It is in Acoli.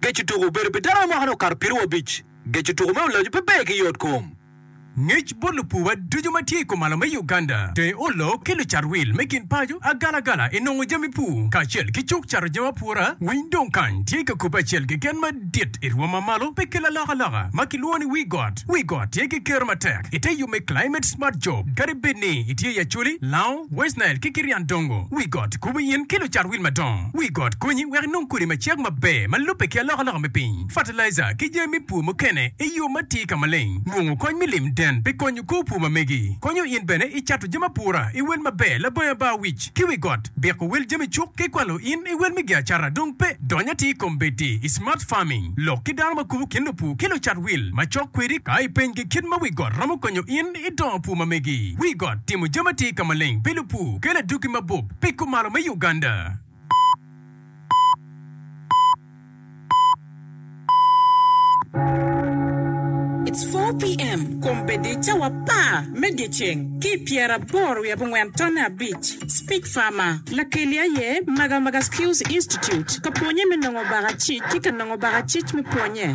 Geco tuko obedo pi dano me mwaka-ni okato pieriwa abic. Geco tuko me Ulacu pe ber ki yot kom. Ngec bot lupuwa ducu ma tye i kumalo me Uganda, tenge olo ki lucat wil me gin paco agalagala i nongo jami pur kacel ki cuk cato jami apura. Winy dong kany tye ka kobbe acel keken madit i rwom ma malo pe ki lalokaloka ma kilwongo ni Wi Got. Wi Got tye ki kero matek i te yub me Climate Smart Job kadi bed ni itye i Acholi, Lango, West Nile ki kit yan dongo wi got kubu in ki lucat wil madongo wi got konyi wek inong kodi ma cek maber ma lubbe ki alokaloka me piny, fertilizer ki jami me pur mukene i yo ma tye ka maleng. Nongo kony me lim den pi konyo kor pur ma megi. Konyo in bene i cato jami apura i wel maber labongi aba wic ki wi got, biko wel jami cuk ki kwalo in i wel me gi acata dong pe dony atir i kom bedi i smart farming lok ki dano ma kubu kin lupur ki lucat wil macok kwedi ka i peny gi kit ma wi got romo konyo in I dongo pur ma megi, wi got timo jami atir ka maleng pi lupur, kelo adwogi mabup pi kumalo me Uganda. It's four PM kombeddi cawa apar me dyeceng ki pyera aboro wiye abongwen tonne abic Speak Farmer Lakeli aye Maga Maga Skills Institute ka pwonye me nongo baka cic ki ka nongo baka cic me pwonye.